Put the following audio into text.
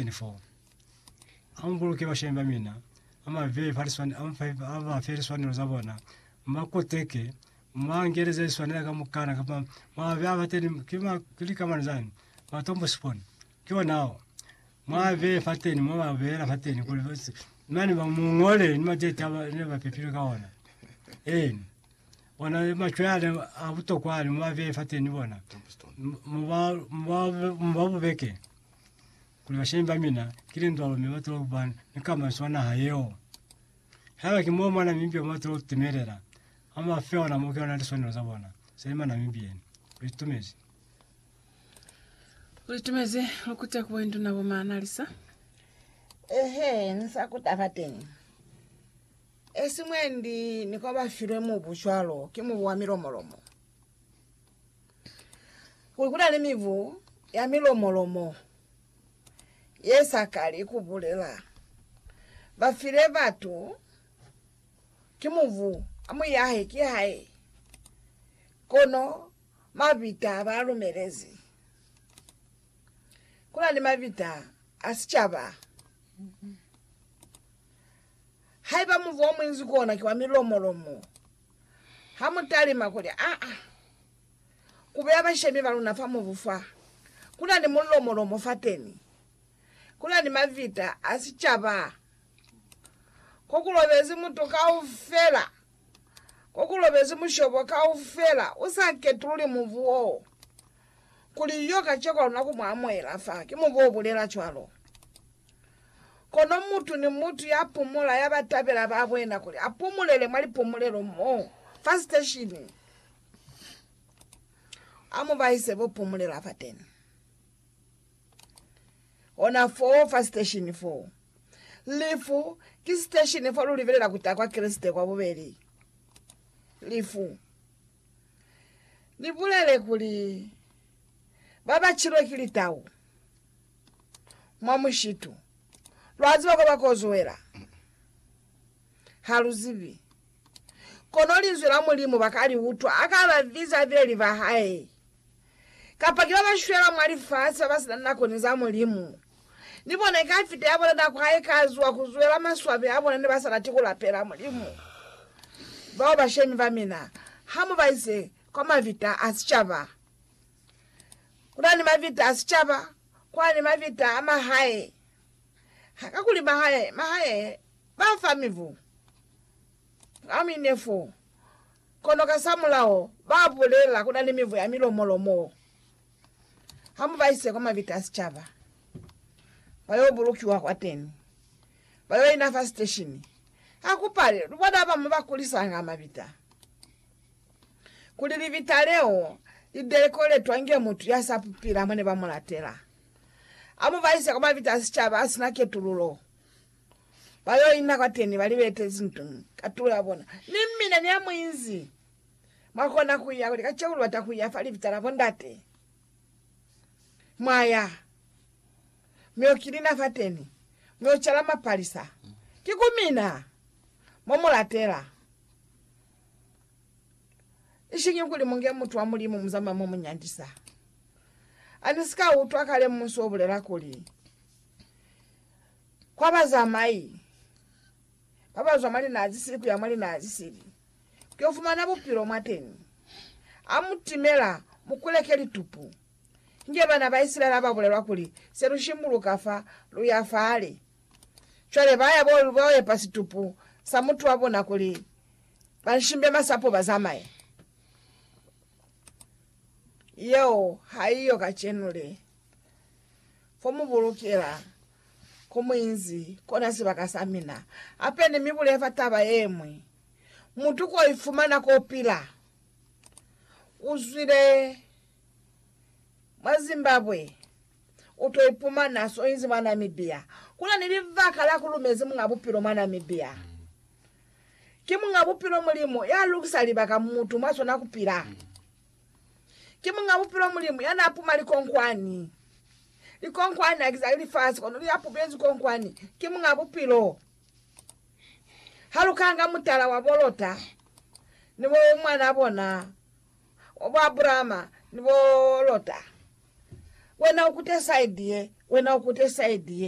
24 Ha mu buluki bashemi ba mina, ha mu ba fe liswanelo za bona, mu ba koteke, mu ba ngeleze liswanela kamukana, kapa mu ba bea fateni, ki ma, ki likamana zani, matombo sipona, ki ona ao, mu a bee fateni, mu ba beela fateni kuli ba se, mane ba mu ngole ni matete a ba- ne ba pepilwe ka ona, eena, ona ni machwe ale a butokwa ale, mu a bee fateni bona, mu ba, mu ba, mu ba bubeke. kuli bashebi ba mina ki lindwalo mi batula ku ba ni kamaiso ya naha yeo. Haiba ki moo Manamibia mo batula ku timelela, ha mu ba fe ona mo ki ona liswanelo za bona sa li Manamibian. Lu itumezi. Lu itumezi lu kuta ku boinduna bo Maanalisa. Ehe, ni sa ku taba teñi. Esimwendi ni kwa ba filwe mubu cwalo ki mubu wa milomolomo. Kuli ku na ni mibu ya milomo-lomo ye sa kali ku bulela. Ba file batu ki mubu, a mu yahe ki hae, kono mabita ha ba lumelezi. Ku na ni mabita a sicaba. Haiba mubu o munzi ku ona ki wa milomo-lomo, Ha mu talima kuli, Aa, ku beya bashemi ba luna fa mubu fa, ku na ni mulomolomo fateni, ku na ni mavita a sicaba, ko ku lobezi mutu kaufela, ko ku lobezi mushobo kaufela, u sa ketululi mubu woo. Kuli yo kaceko luna ku mu amuhela fa, ki mu bo bulela cwalo. Kono mutu ni mutu ya pumula ya ba tabela ba bwena kuli a pumulele mwa lipumulelo mo, fa siteshini. A mu ba ise bo pumulela fateni. Ona foo fa siteshini foo. Lifu, ki siteshini fo lu libelela ku ta kwa Kreste kwa bubeli. Lifu. Ni bulele kuli, Ba ba cilwe ki litau mwa mushitu, lwa ziba kwa ba kozuela? Ha lu zibi. Kono Linzwi la Mulimu ba ka li utwa a ka ba biza beli ba hae. kapa ki babashwela mwa lifasi babasina nako ni za Mulimu. Ni bona ikafita yabona nako haikazuwa kuzwela maswabi abona nebasa lati kulapela Mulimu. Bao bashemi bamina, hamubaise kwa mavita a sicaba. Kuna ni mavita a sicaba, kuna ni mavita a mahae. Hakakuli mahae, mahae bafa mibu. Promi 4. Kono kasamulaho ba bulela ku na ni mivu ya milomo-lomo. Ha mu ba ise kwa mabita a sicaba, ba yo bulukiwa kwateni, ba yo ina fa siteshini. Ha ku pale lu bona ba mu ba kulisanga mabita, kuli libita leo li dekoletwa inge mutu ya sa pupila mone ba mu latela. Ha mu ba ise kwa mabita a sicaba a si na ketululo, Ba yo ina kwateni ba libete zinto ka tulo ya bona, mi mina ni amuinzi mwa kona kuya kuli kaceku lubata kuya fa libita la bondate. Mwa ya, mi yo kilina fateni, mi yo cala mapalisa. Ki ku mina mo mu latela, ishiñi kuli munge mutu wa Mulimu muzamaya mo mu nyandisa. Ani si ka utwa kale mmusu o bulela kuli, Kwa bazamai babazwa mwa linaa zisili kuya mwa linaa zisili kuyo fumana bupilo mwateni, amutimela mukuleke litupu. Inge bana ba Isilaele ababulelwa kuli, Selushimbuluka fa, luya fale. Cwale baya bayoepa situpu sa mutu wabona kuli banshimbe masapo bazamaye. Yeo haiyo kacenu le. Ko mu bulukela, ko mu inzi, kona sibaka sa mina. Hape ni mi bulela fa taba ye ñwi. Mutu ko ifumana ko pila. U zwile mwa Zimbabwe, u to ipumana so inzi mwa Namibia. Kuna ni libaka la ku lumezi Muñ'a Bupilo mwa Namibia. Ki Muñ'a Bupilo Mulimu ya lukisa libaka mutu mwa sona ku pila. Ki Muñ'a Bupilo Mulimu ya n'a puma likonkwani. Likonkwani ha ki za lifasi, kono li apupezi konkwani. Ki Muñ'a Bupilo. Ha lu ka nga mutala wa bo Lota, ni bo mwan'a bona, wa bo Abrahama, ni bo Lota, wena u kute saidi ye, wena u kute saidi ye,